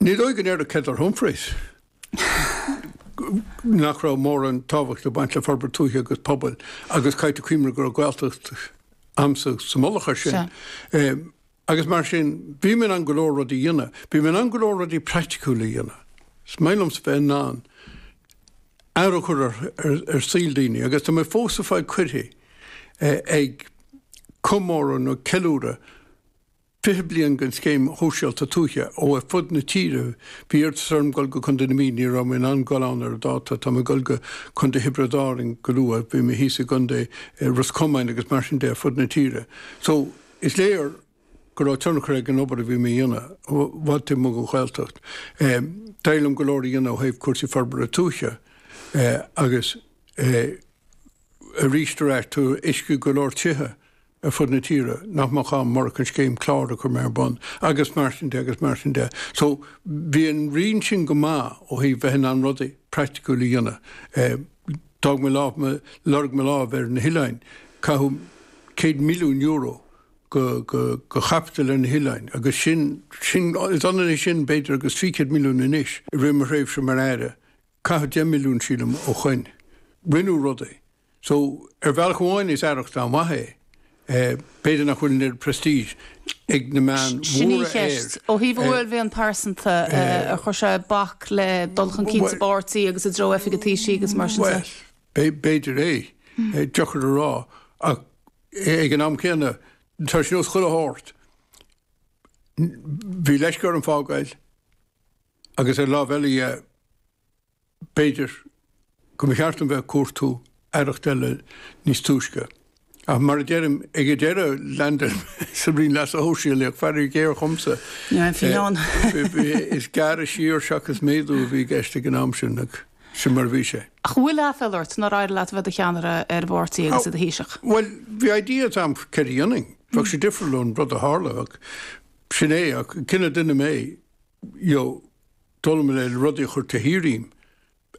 Ní dóigh go ndéarfá le Heather Humphreys nach raibh mórán tábhachta ag baint le forbairt tuaithe agus pobail agus caithfear cuimhneamh go raibh Gaeltacht agamsa sa mullach air sin. Agus mar sin, bhí mé in ann go leor rudaí a dhéanamh. Bhí mé in ann go leor rudaí praiticiúla a dhéanamh. Is maith liomsa bheith in ann athrú a chur ar saol daoine agus tá mé fós ag fáil cuirí ag comóradh nó ceiliúradh, 20 bliain den Scéim Shóisialta Tuaithe ó ar fud na tíre. Bhí iarratas orm dul go Contae na Mí. Ní raibh mé in ann dul ann ar an dáta. Tá mé ag dul go Contae Thiobraid Árainn go luath. Bhí mé thíos i gContae Ros Comáin agus mar sin de ar fud na tíre. So, is léir go raibh tionchar ag an obair a bhí mé a dhéanamh i bhfad taobh amuigh den Ghaeltacht. D'éirigh liom go leor a dhéanamh ó thaobh cúrsaí forbartha tuaithe agus arís ar ais, tá uisce ag go leor tithe, ar fud na tíre, nach mbeadh ann murach an scéim CLÁR a chur mé ar bun, agus mar sin de agus mar sin de. So, bhí an roinn sin go maith ó thaobh bheith in ann rudaí praiticiúil a dhéanamh. D'fhág mé lámh, lorg mo lámh ar na hoileáin, caitheadh céad milliún euro de chaipiteal ar na hoileáin agus sin, sin, is ionann é sin b'fhéidir agus trí chéad milliún anois, i rith mo thréimhse mar Aire. Caitheadh deich milliún, sílim, ó shoin. Rinneadh rudaí. So, ar bhealach amháin is aireacht an-mhaith é. B'fhéidir nach bhfuil an oiread prestige ag na meáin mhóra air. Ó thaobh do uaillmhian pearsanta, ar chuir sé bac le dul chun cinn sa bpáirtí agus i dtreo oifig an Taoisigh agus mar sin de? Bhuel, b'fhéidir é. Deacair a rá. Ach ag an am céanna, tá sé ar nós chuile shórt. Bhí leisce orm fágáil agus ar láimh eile dhe, B'fhéidir go mba cheart dom bheith ag cuartú aireacht eile níos túisce. Ach mar a deirim, ag an deireadh landáil mé sa Roinn Leasa Shóisialaigh, ach faraor géar dhomsa, is gearradh siar seachas méadú a bhí i gceist ag an am sin, agus sin mar a bhí sé. Ach an bhfuil aiféal ort nár éirigh leat a bheith i do cheannaire ar an bpáirtí agus i do Thaoiseach? Bhuel, bhí idea ag an am céard a dhéanfainn. Bheadh sé difriúil ón rud a tharla, ach sin é, ach an cineál duine mé, you know. d'fhoghlaim mé rudaí a chur tharam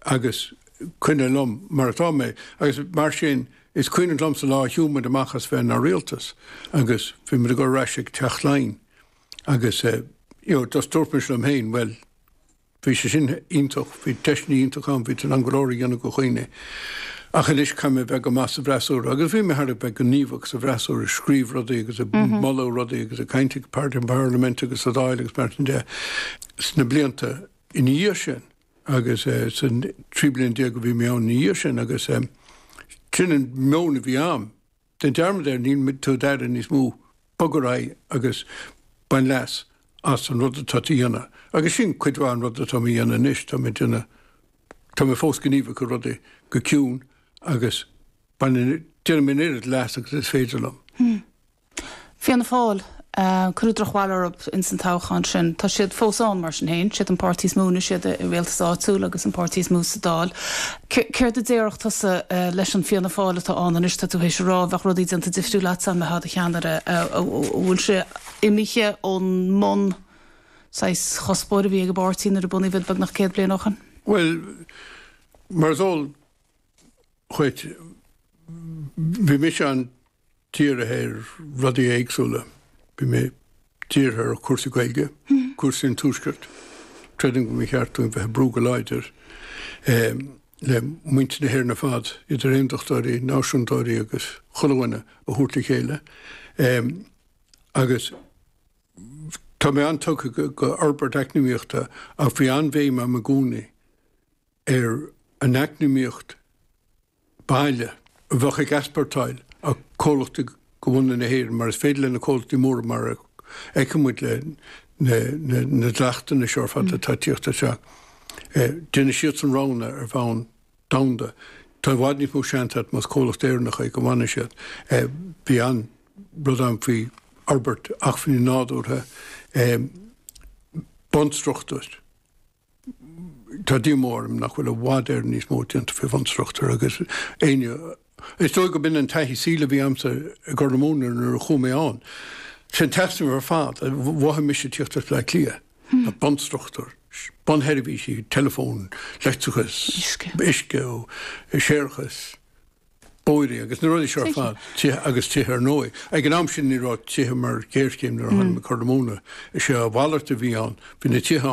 agus coinneáil orm mar atá mé agus mar sin is cuimhin liomsa an lá a shiúil muid amach as bheith inár rialtas agus bhí muid ag goil ar ais ag Teach Laighean agus eh you know just dúirt mise liom féin bhuel bhí sé sin iontach, bhí deiseanna iontach ann, bhí tú in ann go leor a dhéanamh do dhaoine ach anois caithfidh mé bheith go maith sa bhfreasúra agus bhí mé thar a bheith gníomhach sa bhfreasúra ag scríobh rudaí agus ag moladh rudaí agus ag caint sa bparlaimint agus sa Dáil agus mar sin de. sna blianta ina dhiaidh sin agus san 13 bliain a bhí mé ann ina dhiaidh sin agus sin an meon a bhí agam, déan dearmad air, níl tú i d'aire níos mó, bog ar aghaidh agus bain leas as an rud atá tú a dhéanamh. Agus sin cuid mhaith an rud atáim a dhéanamh anois, táim ag déanamh, tá mé fós gníomhach i rudaí go ciúin agus bainim, déanaim an oiread leas agus is féidir liom. Fianna Fáil, cuireadh drochbhail orthu insan toghchán sin. Tá siad fós ann, mar sin féin. Siad an páirtí is mó anois, iad i rialtas áitiúil agus an páirtí is mó sa Dáil. Céard a déarfadh tusa leis an Fianna Fáil atá ann anois, tá tú théis a rá, bheadh rudaí déanta difriúil agatsa dá mbeifeá i do cheannaire, an bhfuil sé imithe ón mbun saghas chuspóir a bhí ag an bpáirtí nuair a bunaíodh iad beagnach céad bliain ó shin? Bhuel, mar is eol dhuit, bhí mise an dírithe ar rudaí éagsúla. Bhí mé dírithe ar cúrsaí Gaeilge, cúrsaí an Tuaiscirt. Creidim go mba cheart dúinn bheith ag brú go láidir le muintir na hÉireann ar fad, idir aondachtóirí, náisiúntóirí agus chuile dhuine, a thabhairt le chéile. Agus tá mé an-tugtha go fhorbairt eacnamaíochta ach bhí an-bhéim agam i gcónaí ar an eacnamaíocht, baile, a bheadh ag easportáil a comhlachtaí de bhunadh na hÉireann, mar is féidir leis na comhlachtaí móra mar a fheiceann muid leis na dleachtanna seo ar fad atá tíocht isteach. Déanann siadsan roghanna ar bhonn domhanda. Tá i bhfad níos mó seans agat más comhlacht Éireannach é go bhfanfaidh siad. Bhí an rud ann faoi fhorbairt acmhainní nádúrtha, bunstruchtúr. Tá díomá orm nach bhfuil i bhfad Éireann níos mó déanta faoi bhunstruchtúr agus is dóigh gurb in an taithí saoil a bhí agamsa i gCorr na Móna nuair a chuaigh mé ann. Sin an t-easnamh ar fad a mhothaigh mise tíocht as Bleá Cliath, bunstruchtúr, bunsheirbhísí, teileafón, leictreachas, uisce, séarachas, bóithre agus na rudaí seo ar fad, tithe agus tithe ar ndóigh. Ag an am sin ní raibh tithe mar ghéarchéim nuair a tháinig mé go Corr na Móna. Is é a mhalairt a bhí ann, bhí na tithe ann